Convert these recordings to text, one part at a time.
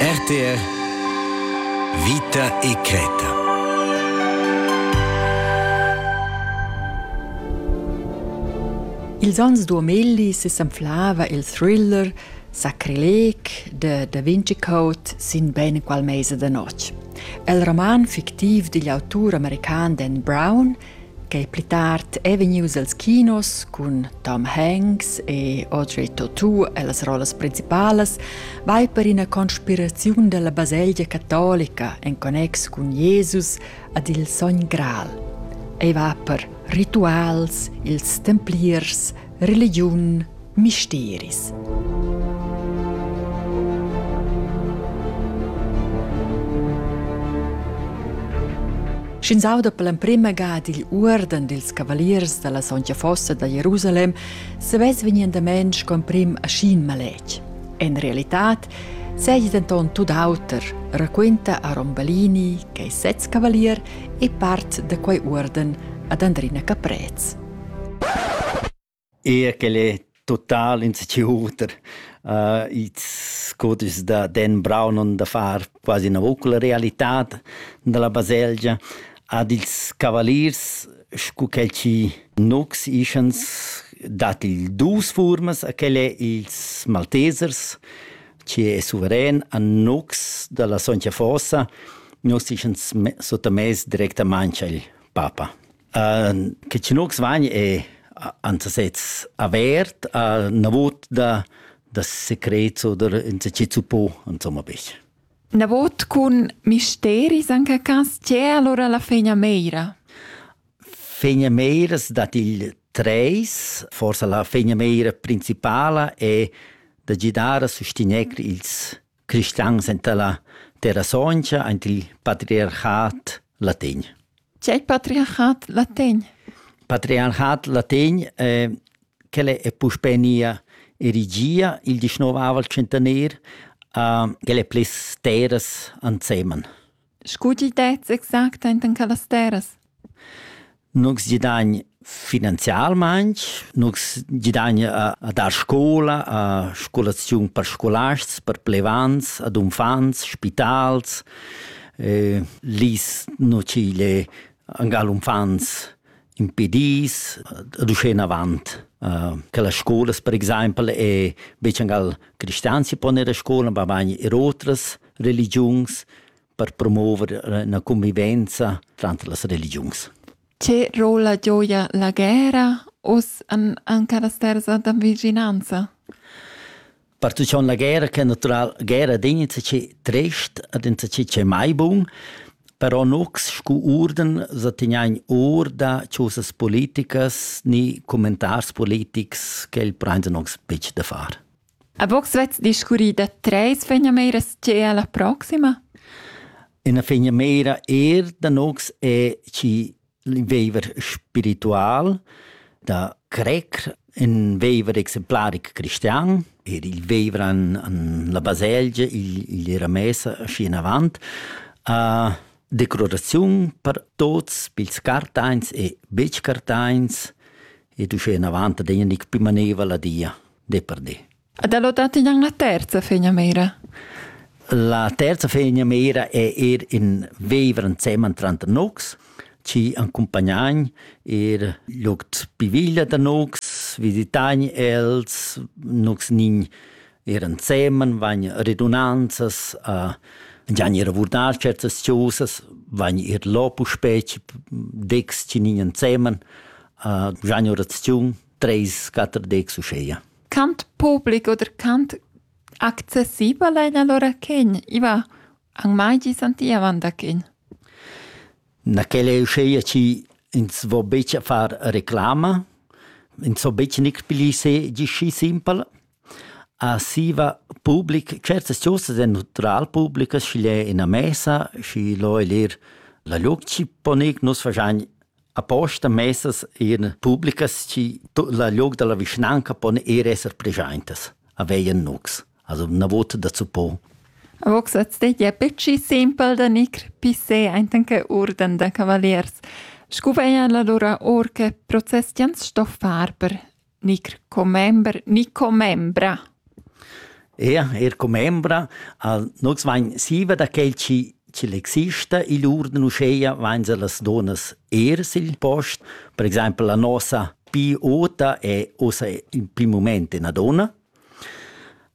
RTR Vita e creta. Ils ans 2000 se s'anflava il thriller Sacrilec de Da Vinci Code sin bene qual mese de notg. El roman fictiv digl autur american Dan Brown Quei pli tard ei vegnius els kinos cun Tom Hanks e Audrey Tautou e las rollas principalas vai per ina conspiraziun dalla baselgia catolica en connex cun Jesus ad il sogn Gral. Ei va per rituals, ils templiers, religiun, misteris. Sch'ins auda per l'emprima gada il uorden dils cavaliers dalla sontga fossa da Jerusalem, se vess vegnendament sco emprim aschin maletg. En realitat seigi denton tut auter, raquenta Aron Balini, che è sez cavalier e part da quei uorden ad Andrina Caprez. Eir quel è total in schi oter. Uh, its codischs da Dan Brown on da far quasi üna voc la realità da la baselgia ad ils cavaliers scu quel chi nox ischans dat il duos fuormas a quel è ils Maltesers chi è suveren a nox da la Soncia Fossa nos ischans sottamess directamaing al papa. Uh, che tschenox vagn è ansasez avert a na vot da da secrets oder insacchi suppo insomma bich. Na vot cun misteris anche cas c'è allora la fegna meira? Fegna meiras dat il treis, forse la fegna meira principala è da gidare a sostenere ils cristians enta la Terrasoncia ant il patriarchat latin. C'è il patriarchat latin? Patriarchat latin eh, che è puspè nia erigia il 19 centenario, eh, che le plis terras anseman. Scu t'il dets exact enten quellas terras? Nus gidagn finanzialmaing, nus gidagn a, a dar scoula, a scolaziun per scolasts, per plevants, ad unfants, spitals, eh, lis nu tg'igl angal unfants impedis, ad uschè enavant. Uh, che las scolas per exaimpel e betg angal cristians si pon ir a scola, ma bagn er otras religiuns per promover la convivenza tranter las religiuns. Che rolla gioia la guerra uss en, en quellas terras da vicinanza? Pertuccont la guerra che natural guerra din insatgi trist ad insatgi che mai bun, però nux scu urden sa tignain or da chosas politicas ni commentars politics che il prende nux pic da far. A box vets discurrì da treis fegnameras che è la proxima? Una fegnamera er da nox è chi veiver spiritual da crer in veiver exemplaric cristian, er il veiver an, an la baselgia, il, il era messa schi in avant, a declaraziun per tots, pils cartains e betsch cartains, e du sche in avant da degna nic più maneva la dia. di per di. Ed è dati in la terza fegna meira? La terza fegna meira è er in viver insieme tra Nux, ci accompagnain er lugt piviglia da Nux, visitain els, Nux nin er insieme, van redunanzas a gian er vurdar certas chosas, van er lopu specie, dex ci nin insieme, a gian oraziun, Treis, quater decs uscheia. Cant public oder cant accessibel ein allora quen? Iva an mai gi santiavan da quen? Na quella è uscheia ci ins vo betg a far reclama, ins vo betg nic pli se gi schi simpel. A siva public, certas chosas è natural publicas, schi l'è ina messa, schi lo è lir la luc ci po nus fagian Aposta messas eran publicas chi tut la liug dalla vischnanca pon ir esser preschaintas, aveien nux, also na vot dazu po. Vox at stegia pecci simpel da nicr pissé aintenche urden da cavaliers. Scu veia la lura or che process ins sto far per Gnir commember ni commembra? Eher, eher commembra. Al nus vain siva da quel chi ch'el exista i'l uorden uschea vain se las donas ers il post. Per exaimpel la nossa pi ota è ossa in prim mument üna donna.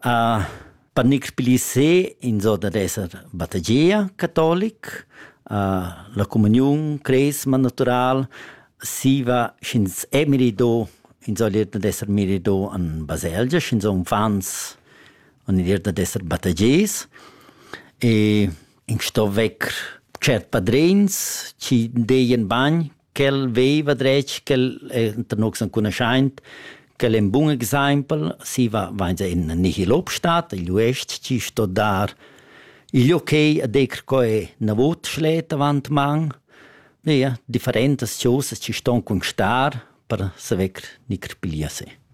Per gnix pli se inso dad esser battageia catolic, la comuniun cresma natural, siva sch'ins è mirido inso l'ir dad esser mirido in baselgia, sch'inso unfants han l'ir dad esser battageis e ins sto vecker tschert padrins chi deien bagn ch'el veva dretg ch'el enta nus enconuschaint quel ein bun exempel si va vain se in nihil obstat il uest ci sto dar il okay a decr co è na vot schlet avant man ja differentas choses ci ston constar per saver ni crpilia se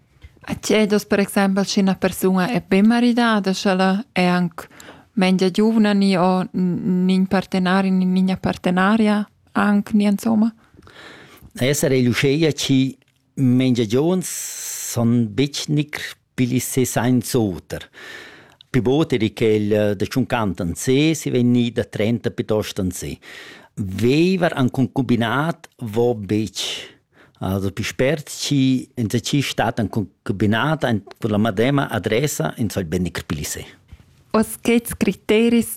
A chiedos per exempel se una persona è ben maridada, sch'ella è anche mengia giovane ni o nin partenaria ni nina partenaria? Anc ni insomma? Esser egl uscheia chi mengiagions son betg nicr pigl sez sainz oter. Pi bod eri quel eh, da tschuncant an se, si vegnì da trenta piuttost an se. Veiver an concubinat vo betg. Also pi spert chi insatgi stat an concubinat, an la madema adressa, ins vogl be nicr pigl sez. Oz quets criteris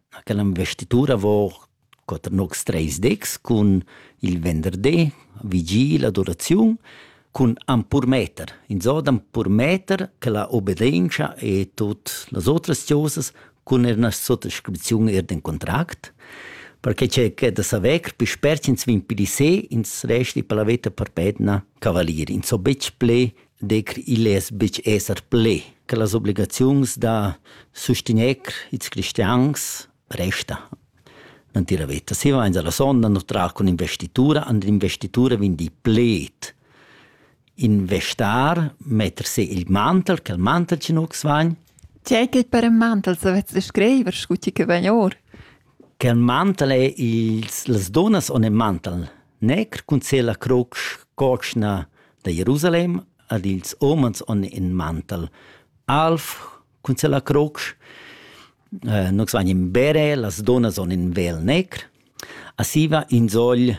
quella investitura vor quater nocs treis decs cun il venderdi, vigil, adoraziun, cun ampurmeter. Insò d'ampurmeter che la obbedienza e tut las otras cosas cun er una sottoscrizione er den contract, perché c'è che da saver più spert ins vin più di se ins resti per la veta per pedna cavalier. Ins so betg ple decr igl less betg esser ple che las obligaziuns da sustegner ils cristians resta natira veta. Si vains alla sonda no tra cun investitura, and investitura vegn di pled. Investar, metter se il mantel, che il mantel ci nu vagn. C'è che per un mantel savez scriver, scuti che vegn or. Che il mantel è ils, las donas on il mantel negr, cun se la croc, cochna, da Jerusalem ad ils umans on in mantel. Alf cun se la croc, eh, nox van in bere, las donas on in vel necr, asiva in sogl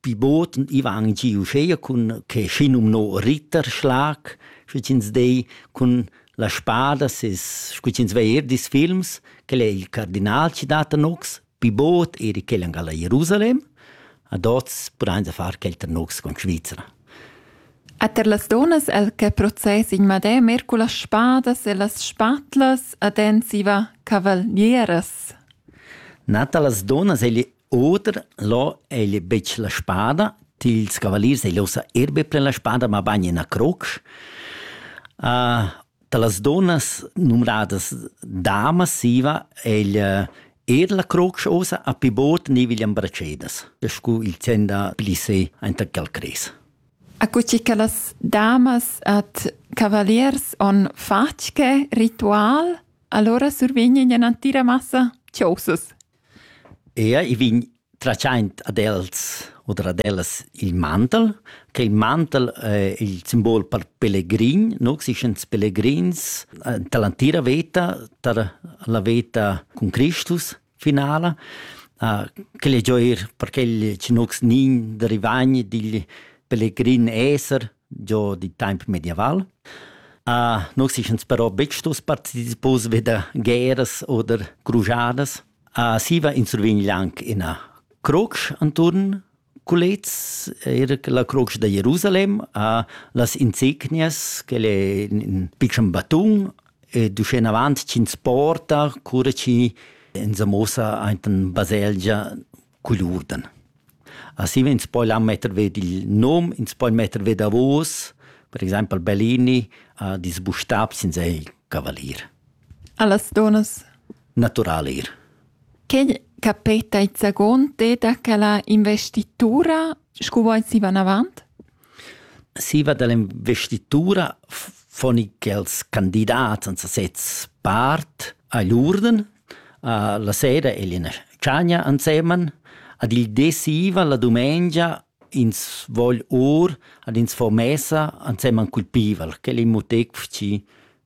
pivot und i van giu scheia cun che schinum no Ritterschlag, schütins dei cun la spada, ses schütins veir dis films, che è il cardinal ci data nox, Pi bod eri quel angal a Jerusalem, ad oz pudain far quel tranocs con Svizra. A ter las donas el che process in madè mer cu las spadas e las spatlas ad ensiva cavalieras. Nata las donas egli oder lo egli betg la spada, tils cavaliers egli osa erbe pre la spada ma bagn in a crocs. Uh, da las donnas numnadas dama siva egl er la crocs osa a pi bot ni viglian bracedas, scu il tenda pli se enta quel cres. Accuci che las damas at cavaliers on fatge ritual, allora survignen en antira massa ciosas. Ea, i vin tratschaint ad els u ad ellas il mantel, che il mantel è il simbol per pelegrin, no? Si sch'ins pelegrins tar l'antira veta, tar la veta cun Cristus finala, quel è giò eir per quel chi nox nin da rivagn digl pelegrin esser giò d'in taimp medieval. Nox si sch'ins però betg stos partecipos ve da gueras oder crujadas. A siva insurvegn anc ina crotsch anturn culets, era la crotsch da Jerusalem, a las insegnias, quel è in pitschen batun, ed uschenavant ch'ins porta, cura chi ins sa mossa aint in baselgia, cugl urden. Assi vegn poi là metter ved il nom, ins poi metter ved davos, per exempel Bellini ha disbustab sin sei cavalier. Allas donas? Natural ir. Che capeta il zagon te da quella investitura, scu vuoi si van avant? Siva dall'investitura fon i quels candidats en sasez part agl urden. La sera è ina tschagna ensemen. Ad il de siva la dumengia ins vogl or ad ins fo messa ensemen cul pival. Quel è in muteg fci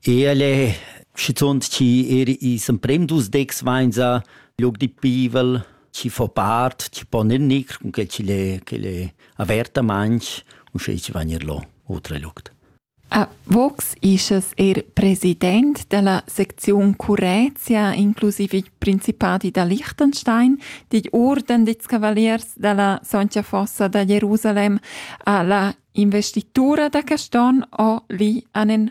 El è schizunt chi er ils emprims dus decs vainsa lüg di pivel, chi fo part, chi pon eir gnir, cunquai chi'l è chi'l è avertamaing, uschè chi vain eir lò otra lügd. A Vox ischas eir president da la secziun Currezia, inclusiv il Principadi da Liechtenstein, digl Orden dits Cavaliers da la Soncia Fossa da Jerusalem, a la investitura da Caston o li an en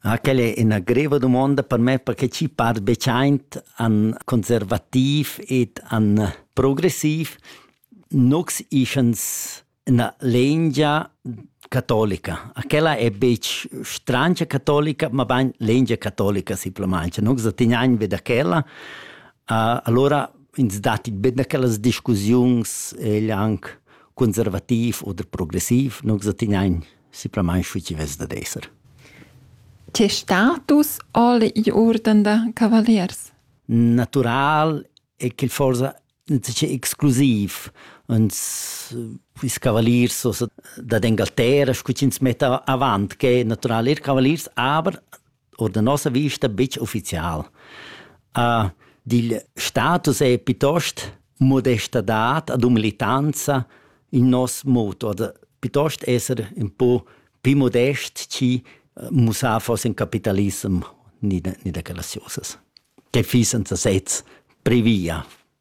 Ah, quella è ina greva domanda per me perché ci par bechaint an conservativ ed an progressiv. Nox ischans na lengia catolica. Aquella è betg strancia catolica, ma bain lengia catolica simplesmente. Nox tenian be da quella. Uh, allora ins datti be da quellas discussiuns, egl anche conservativ oder progressiv. Nox tenian simplamain schi chi vess dad esser. Tes status alle i urden da cavaliers? Natural è che forsa è exclusiv. Uns ils cavaliers so da d'Engalterra, scu ch'ins metta avant, che natural er cavaliers, aber oder da nossa vista betg ufficial. Uh, dil status è piuttost modestadad ad umilitanza in nos moto, oder piuttost esser un po più modest ci eh, mussar fosse in capitalism ni da, ni da graziosas, che fissen sezs previa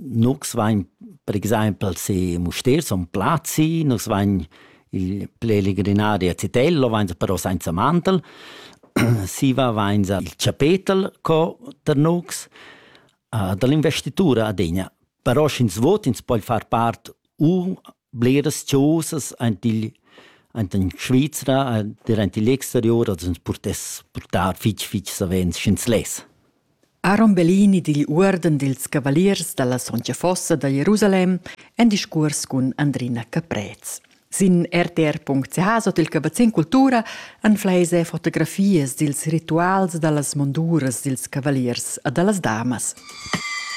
Nus vain per exaimpel sii Mustér, Son Plazi, nus vain il plelegrinario a Zitello, vainsa però sainza mantel, siva vainsa il chapetel co tar nus, da l'investitura adegna. Però sch'ins vot, ins poi far part u bleras chosas aint igl aint in Svizra, der aint igl exterior, als ins purtess purtar fitg, fitg savens sch'ins less. Aaron Bellini digl uorden dils cavaliers dalla sontga fossa da Jerusalem en discurs cun Andrina Caprez. Sin rtr.ch sot il cavazzin cultura anfleis e fotografias dils rituals dallas monduras dils cavaliers a dallas damas.